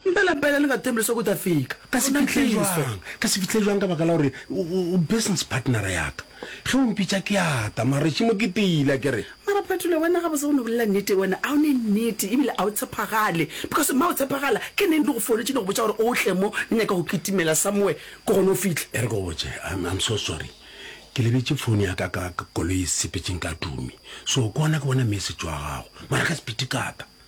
Mpe lapele le ka temple sa kuta fika. Ka se fihle jwang? Ka se fihle jwang ka baka la gore o business partnera ya ka. Ge o mpitša ke a ta, mara šimo ke tila ke re. Mara Phetole, wena ga bose o no bolela nnete wena, a o ne nnete ebile a o tshepagale because ma o tshepagala ke neng di go foletše di go botša gore o tle mo le nyaka go kitimela somewhere ke gona o fihle. E re ke go botše, I'm, I'm so sorry ke lebetše phone ya ka ka koloi e sepetšeng ka tumi so ke gona ke bona message wa gago mara ka sepiti ka ta.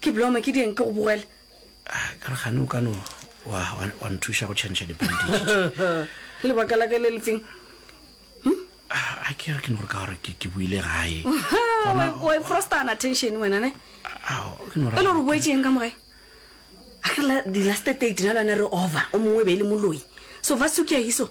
Ke blome ke dieng ke go bogele. Ah ka re gane o ka no wa wa nthuša go tšhantšha di bandage. Lebaka la ka le lefeng? Hm? Ah, a ke re ke no re ka gore ke ke buile gae. Wa iprosta na tension wena ne? Ao ke no ra. Pele re boetšeng ka mogae. A ke la di last date na lwana re over o mongwe be le moloi. So va sukia hiso.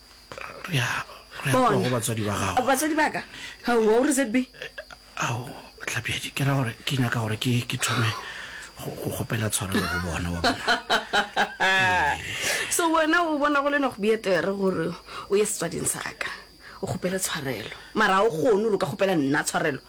re a re a tloga go batswadi ba gago batswadi ba ka aowa o re zb ao tlapjadi ke ra gore ke nyaka gore ke ke thome go go kgopela tshwarelo go bona wa bona so wena o bona go le no go bietere gore o ye setswading sa ka o kgopele tshwarelo mara o kgone gore o ka kgopela nna tshwarelo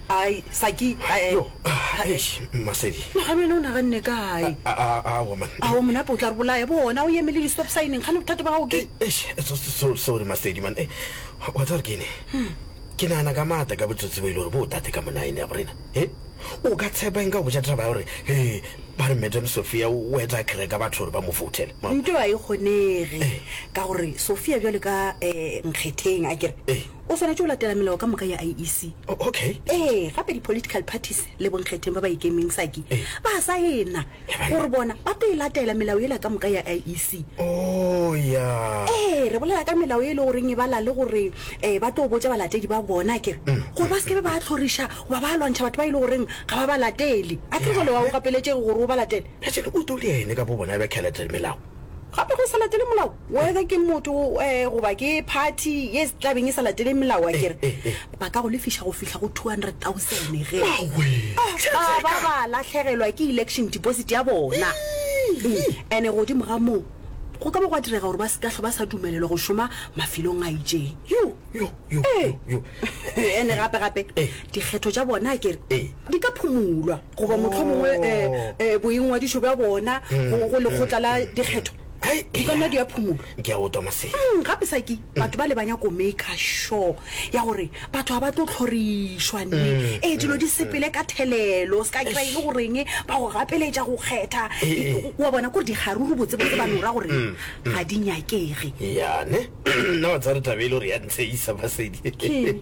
Ai, Saki, eh, Yo, ah, eh, eish, Mmasedi. no ga wena o naganne kae? A- a- Aowa, man. Ao monape o tla re bolaya bona o emele di-stop signeng gane bothata ba gago ke Eh, eish, so- so- so- sorry, Mmasedi, man. Eh, wa tseba gore ke ene? Hmm. ke nagana ka maata ka botsotsi bo e le gore bo o tate ka monaene ya gorena e o ka tshepa eng ka go botša taba ya gore e ba re madam sophia o etla kereka batho gore ba mo foutele nto a e kgonege ka gore sophia bjale ka um nkgetheng a kere Eh. O swanetše go latela melao ka moka ya IEC. Oh, okay. Ee, gape di-political parties le bonkgetheng ba ba ikemeng saki Ee. ba a saena Eba ya. gore bona ba tlo e latela melao yela ka moka ya IEC. Oh, ya. Ee, re bolela ka melao e e le goreng e bala le gore um ba tlo botša balatedi ba bona kere gore ba se ke be ba tlhoriša goba ba lwantšha batho ba e le goreng ga ba ba latele. A kere jwale wa o gapeletšege gore o ba latele? Bjale o tole ene ka bo bona bja Caleb le melao. Gape ge o sa latele molao Whether ke motho goba ke party ye se tlabeng e sa latele melao, a kere ba ka go lefiša go fihla go 200,000 ge ba ba ba lahlegelwa ke election deposit ya bona. Ene godimo ga moo, go ka ba gwa direga gore ba se ka hlwa ba sa dumelelwa go šoma mafelong a itšeng. Ene gape-gape, dikgetho tša bona a kere di ka phumulwa goba mohlomongwe boingwadišo bja bona go lekgotla la dikgetho Hai, O ka nwa diaphumolo. Ke a otwa masedi. Mm, gape sa ke batho ba le ba nyako maker sure ya gore batho ga ba tlo tlhorišwa ne ee dilo di sepele ka thelelo se ka kry e le goreng ba go gapeletša go kgetha E- wa bona kore dikgaruru botsebotse ba no ra gore ga di nyakege Yane. Nna wa tsare tabele gore ya ntsheisa masedi. Keng?